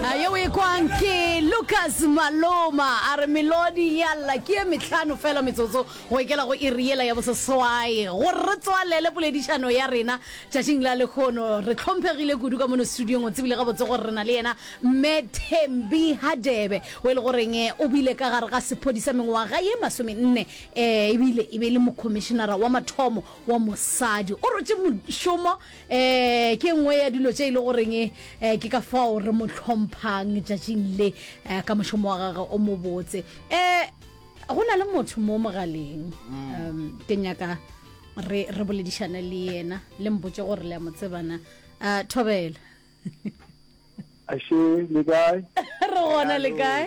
ayo o e kwang ke lucas maloma a re melodi ya lla ke ye metlhano fela metsotso go ekela go iri yela ya boseswae gore re tswalele poledišano ya rena tšatšing la lekgono re tlhomphegile kudu ka mono studiong o tsebile gabotse gore re na le yena mme thembi hadebe o e le goreng eh, o bile ka gare ga sephodi sa mengwaga ye masomenne um ebile e be e le mokhomišenara wa mathomo wa mosadi o rotše mošomo um ke nngwe ya dilo tše e le goreng um ke ka fao re mo tlhomphang tšatšing le um ka mošomo wa gage o mobotse um go na le motho mo mogaleng mm. um ke nyaka re re boledišane le yena le mpotse gore le ya mo tsebana um thobela ashe le kae re gona le kae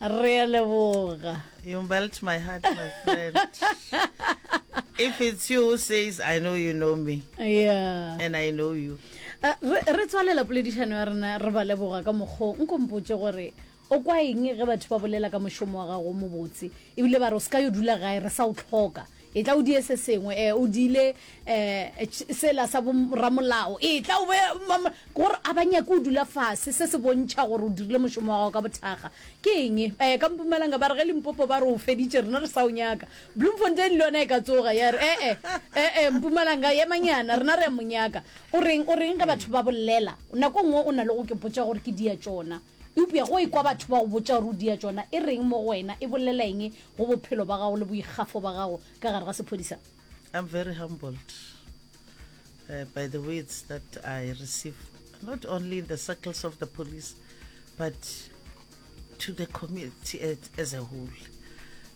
Re a leboga. You melt my heart, my friend. If it's you who says, I know you know me. Yeah. And I know you. Uh, re tswalela poledišano ya rena re ba leboga ka mokgo nkompotse gore o kwa eng ge batho ba bolela ka mošomo wa gago mobotse ebile ba re o se ka yo dula gae re sa o tlhoka Etla o die se sengwe. E, o diile, e, ch, sela sa bo-ramolao. Etla o be, ma, ma, ke gore a ba nyake o dula fase, se se bontšha gore o dirile mošomo wa gago ka bothakga. Ke eng? E, ka Mpumalanga ba re ge Limpopo ba re o feditše, rena re sa o nyaka. Bloemfontein le yona e ka tsoga ya re, E-e, e-e, Mpumalanga, emanyana, rena re a mo nyaka. O reng, o reng ge batho ba bolela? Nako e nngwe o na le go ke botša gore ke diatšona. Eupša go ekwa batho ba go botša gore o dia tšona e reng mo go wena, e bolela eng go bophelo ba gago le boikgafo ba gago ka gare ga sephodisa? I'm very humbled uh, by the words that I receive, not only in the circles of the police, but to the community as a whole.